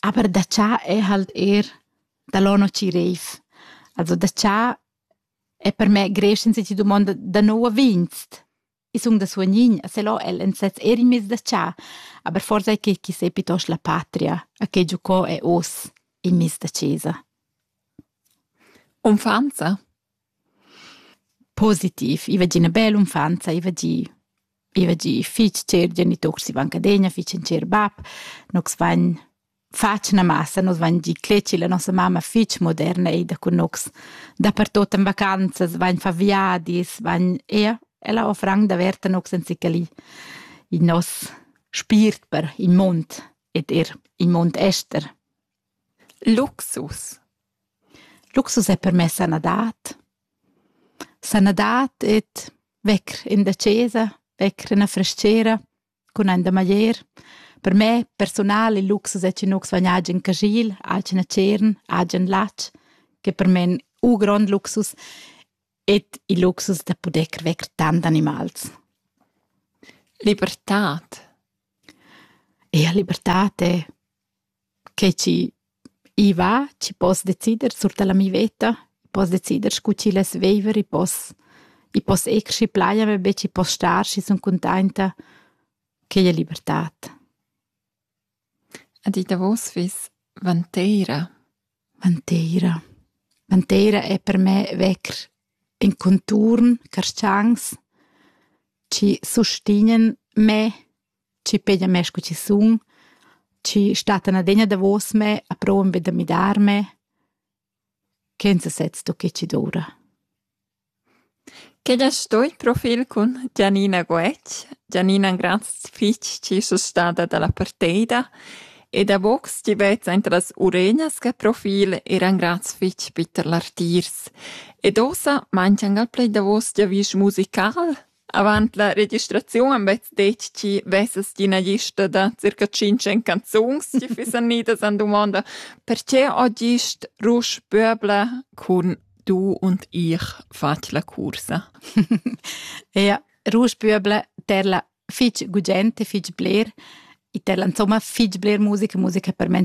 Aber da cha è halt eir dall'anno chi reiv. Also da cha è per me creschend se ti dumonda da nouv vinst. I sun da suognin, e se là el ün sez eir in mez da cha, aber forsa è que chi s'è piitost la patria a che giocò è hoz in miss da chesa. Unfa'nza? Positiv, i va gi üna bella unfanza, i va gi i va gi fich cher geniturs sivanchadegna, fich ün cher bap, nogs vain fatg üna massa, nos vain gi cletgi la nossa mamma fich moderna eida cun nogs. Dapertuot in vacanzas vain fà viadis, vain eir ella ho franc daverta nogs anzichà lì in nos spiert per il mund ed eir il mund ester. Luxus. Luxus ei per mei sanadad. Sanadad ed vecker in da chasa, vecker ina frestgera cun ein da maglier. Per mei persunal il luxus ei che nus vegn agen caschil, agen tschern, agen latg, che per mei ein u grond luxus ed il luxus da puder vecker tant animals. Libertad. Ja, libertad è Che chi i va, chi poss decider sur da la mia veta. I poss decider scu chi less viver, i poss i poss eir schi plaja me be, schi poss star, schi sun cuntainta. Quai è libertad. Ed ì davos fiss vanteira. Vanteira. Vanteira è per me vecr in conturn, carschans chi sustignan me Chi peglia mê scu chi sun, chi stattan adegna davos me a prouvan be da midarme, ch'els as sezzu che chi doura. Quel es sto il profil cun Gianina Guetg. Gianina ün grand fich chi es stada da la parteida e davo chi vezza inter las uregnas che profil eran grands fich bitter lartiers. Ed ossa manchian gal pled davos giavüsch musical? Avant la registraziun han bets detg chi vessas ti ina lista da circa tschintg canzuns ti fissan idas an dumonda perche ho gist Rusch Böbler cun Du und ich fat la cursa? ja, Rusch Böbler ter la fich gugent e fich bler e ter la insomma fich bler musica musica per me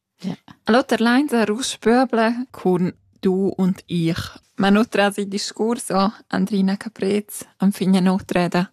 L'oter lain sar uss pöbler cun du und ich. Ma no trasi discurs o Andrina Caprez enfin a n'otra eda.